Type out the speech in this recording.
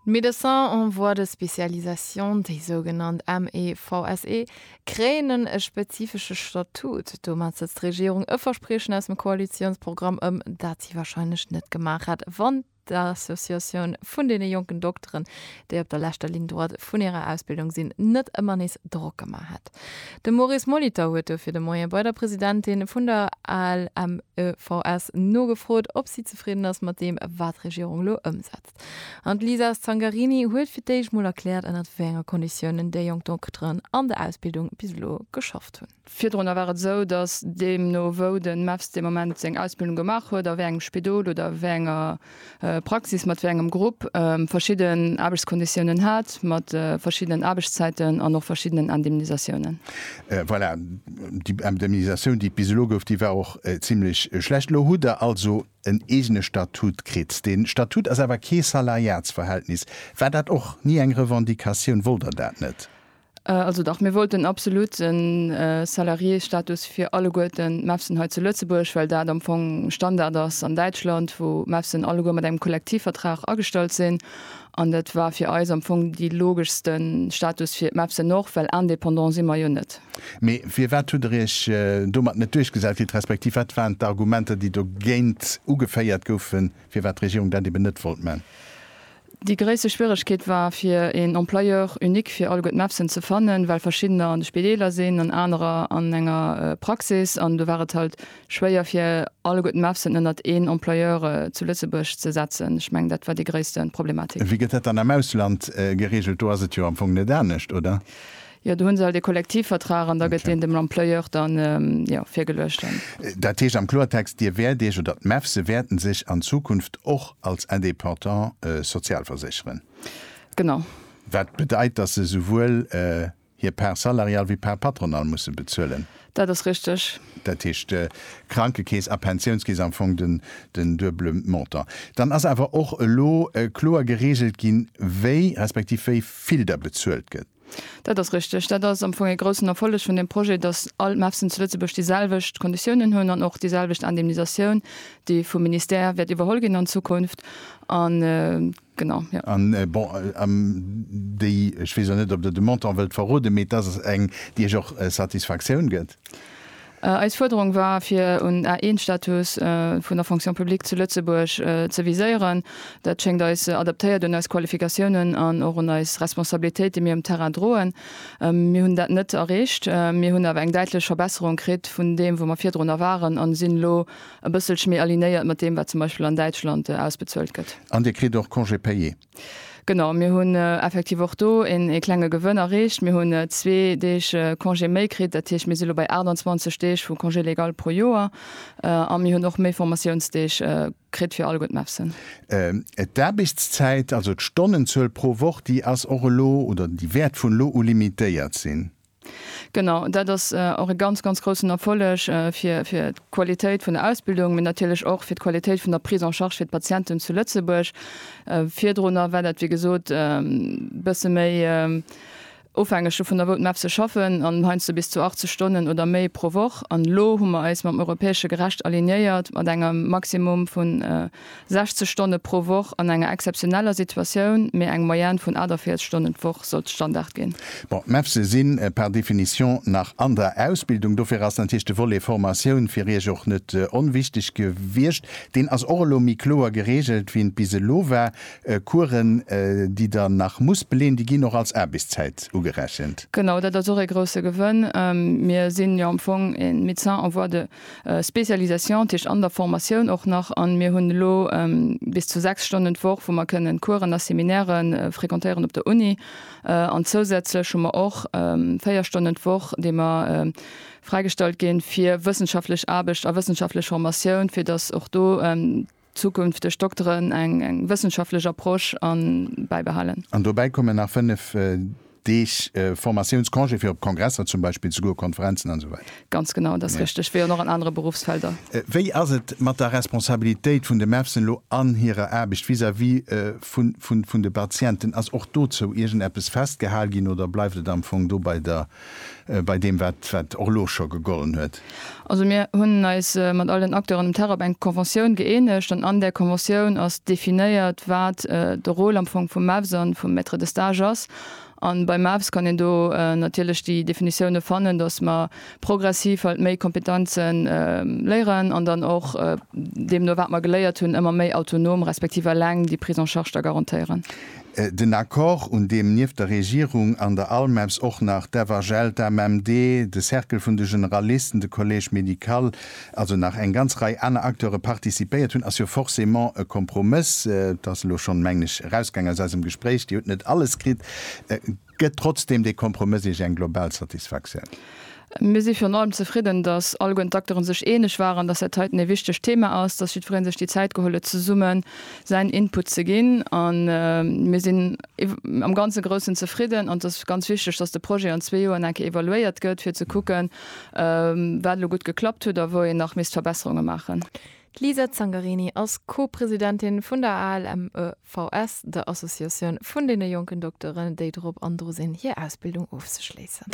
D'Médecins en voie de spécialisation, déi sougenannt MEVSE, kréien e spezifesche Statut. Domat sëtzt d'Regierung e Verspriechen aus dem Koalitiounsprogramm ëm, dat si warscheinlech net gemaach hätt, wann d'Associatioun vun deene jonken Dokteren, déi op der leschter Ligne droite vun hirer Ausbildung sinn, net ëmmer nees Drock gemaach hätt. De Maurice Molitor huet dofir de Moien bei der Presidentin vun der ALMEVS nogefrot, ob si zefridden ass mat deem, wat d'Regierung elo ëmsetzt. An d'Lisa Zangarini huet fir d'éischt mol erkläert, ënnert wéi enge Konditiounen déi jonk Dokteren an der Ausbildung bis elo geschafft hunn. Virdrunner war et esou, datt deemno wou de MEPS dee Moment seng Ausbildung gemaach huet, a wéi engem Spidol oder wéi enger Praxis, mat wéi engem Grupp, verschidden Aarbechtskonditiounen hat, mat verschiddenen Aarbechtszäiten an och verschiddenen Indemnisatiounen. Voilà, déi Indemnisatioun, déi et bis elo gouf, déi war och zimlech schlecht. Elo hutt Der also en eegene Statut kritt. Dee Statut ass awer kee Salariatsverhältnis. War dat och ni eng Revendicatioun? Wollt Der dat net? Also dach, mir wollten absolut e Salariésstatus fir alleguerten d'Mefsen hei zu Lëtzebuerg, well dat am Fong Standard ass an Däitschland, wou d'Mefsen alleguer mat engem Kollektivvertrag agestallt sinn. An dat war fir eis am Fong dee logeschste Status fir d'Mefsen och, well indépendant si mer jo net. Mee firwat hutt Der Iech domat net duerchgesat kritt, respektiv wat waren d'Argumenter, déi dogéint ugeféiert goufen, firwat d'Regierung dat eben net wollt man? Déi gréisste Schwieregkeet war fir een Employeur unique fir alleguer d'Mepsen ze fannen, well verschiddener an de Spideeler sinn an anerer an enger Praxis an do war et halt schwéier fir alleguer d'Mepsen ënnert een Employeur zu Lëtzebuerg ze setzen. Ech mengen dat war déi gréisste Problematik. Wéi gëtt dat dann am Ausland gereegelt? Do ass et jo am Fong net anescht, oder? Jo, do hu se alt ee Kollektivvertrag an da gëtt deen dem Employeur dann, jo, virgeluecht dann. Dat heescht am Kloertext, Dir wäert Iech, oder d'MEFSe wäerten sech an Zukunft och als Indépendant sozialversécheren? Genau. Wat bedeit, dass se souwuel hir Part salariale wéi d'Part patronale musse bezuelen? Dat ass richteg. Dat heescht, Krankekeess a Pensiounskeess, am Fong den duebele Montant. Dann ass awer och elo kloer gereegelt ginn, wéi, respektiv wéi vill da bezuelt gëtt. Dat ass richteg. Dat ass am Fong ee groussen Erfolleg vun deem Projet, dass all d'MAFSen zu Lëtzebuerg déi selwecht Konditiounen hunn an och déi selwecht Indemnisatioun, déi vum Ministère wäert iwwerholl ginn an Zukunft. An, genau, jo. An, bon, am, déi, ech weess och net, ob Der de Montant wëllt verroden, mee dass ass eng, déi Iech och Satisfaktioun gëtt? Eis Fuerderung war, fir un A-1-Status vun der Fonction publique zu Lëtzebuerg ze viséieren. Dat schéngt eis adaptéiert un eis Qualifikatiounen an och un eis Responsabilitéit, déi mir um Terrain droen. Mir hunn dat net erreecht. Mir hunn awer eng däitlech Verbesserung kritt vun deem, wou mer virdrunner waren, a sinn elo e bësselche méi alignéiert mat deem, wat zum Beispill an Däitschland ausbezuelt gëtt. An Dir kritt och Congé payé? Genau, mir hunn effektiv och do een ee klenge Gewënn erreecht. Mir hunn zwee Deeg Congé méi kritt. Dat heescht, mir si lo bei 28 Deeg vu Congé légal pro Joer a mir hunn och méi Formatiounsdeeg kritt fir all gutt MEFSen. D'Aarbechtszäit, also d'Stonnenzuel pro Woch, déi ass och elo oder déi wäert vun elo u limitéiert sinn? Genau, dat ass och e ganz, ganz groussen Erfolleg fir, fir d'Qualitéit vun der Ausbildung, mee natierlech och fir d'Qualitéit vun der Prise en charge fir d'Patienten zu Lëtzebuerg. Virdrunner war dat, wéi gesot, e bësse méi ofhängeg dovun, wou d'MAF se schaffen, an heiansdo bis zu 80 Stonnen oder méi pro Woch. An elo hu mer eis mam europäesche Gerecht alignéiert, mat engem Maximum vun 60 Stonne pro Woch an enger exzeptioneller Situatioun, mee eng Moyenne vun 48 Stonnen d'Woch sollt Standard ginn. Bon, d'MEPSe sinn par définition nach an der Ausbildung, dofir ass natierlech de Volet Formatioun fir Iech och net onwichtig gewiescht. Deen ass och elo méi kloer geregelt, wéi en bis elo war. Coursen, déi Der nach musst beleen, déi ginn och als Aarbechtszäit ugerechent. Genau, dat ass och ee grousse Gewënn. Mir sinn jo am Fong e Médecin en voie de. Spécialisation, dat heescht an der Formatioun och nach, a mir hunn elo bis zu 6 Stonnen d'Woch, wou mer kënnen Coursen a Seminäre frequentéieren op der Uni. An zousätzlech hu mer och 4 Stonnen d'Woch, déi mer fräigestallt ginn, fir wëssenschaftlech Aarbecht a wëssenschaftlech Formatioun, fir datt och do Zukünfteg Dokteren eng wëssenschaftlech Approche an bäibehalen. An dobäi kommen nach 5 Deeg Formatiounscongé fir op Kongresser zum Beispill ze goen, Konferenzen an esou weider. Ganz genau, dat ass richteg, wéi an och an anere Beruffsfelder. Wéi ass et mat der Responsabilitéit vun de MEFSen elo an hirer Aarbecht vis-à-vis vun de Patienten? Ass och dozou iergend eppes festgehal ginn oder bleift et am Fong do bei der bei deem wat wat och elo scho gegollen huet. Also mir hunn eis mat all den Acteuren um Terrain op eng Conventioun gëeenegt an an där Conventioun ass definéiert wat de Rôle am Fong vum MEVS a vum Maître de Stage ass. A beim MEVS kann een do natierlech déi Definitioune fannen, datt mer progressiv halt méi Kompetenze léieren an dann och deemno wat mer geléiert hunn ëmmer méi autonom respektiv eleng déi Prise en charge da garantéieren. Den Accord, un deem nieft der Regierung an der ALMEPS och nach d'FHL, d'AMMD, de Cercle vun de Generalisten, de Collège médical, also nach eng ganz Rei aner Acteure participéiert hunn, ass jo forcément e Kompromëss. Et ass elo schonn, mengen ech, erausgaang aus eisem Gespréich, Dir hutt net alles kritt. Gëtt trotzdeem dee Kompromëss Iech eng global Satisfaktioun? Mir si virun allem zefridden, dass alleguerten d'Acteuren sech eeneg waren, dass dat heiten ee wichtegt Thema ass, dass jiddweree sech déi Zäit geholl huet, zesumme säin Input ze ginn. A mir sinn am ganze Groussen zefridden. An et ass ganz wichteg, dass de Projet an zwee Joren eng Kéier evaluéiert gëtt, fir ze kucken, wat elo gutt geklappt huet a wou een nach misst Verbesserunge maachen. D'Lisa Zangarini ass Co-Presidentin vun der ALMEVS, der Associatioun vun deene jonken Dokteren, déi drop an dru sinn, hir Ausbildung ofzeschléissen.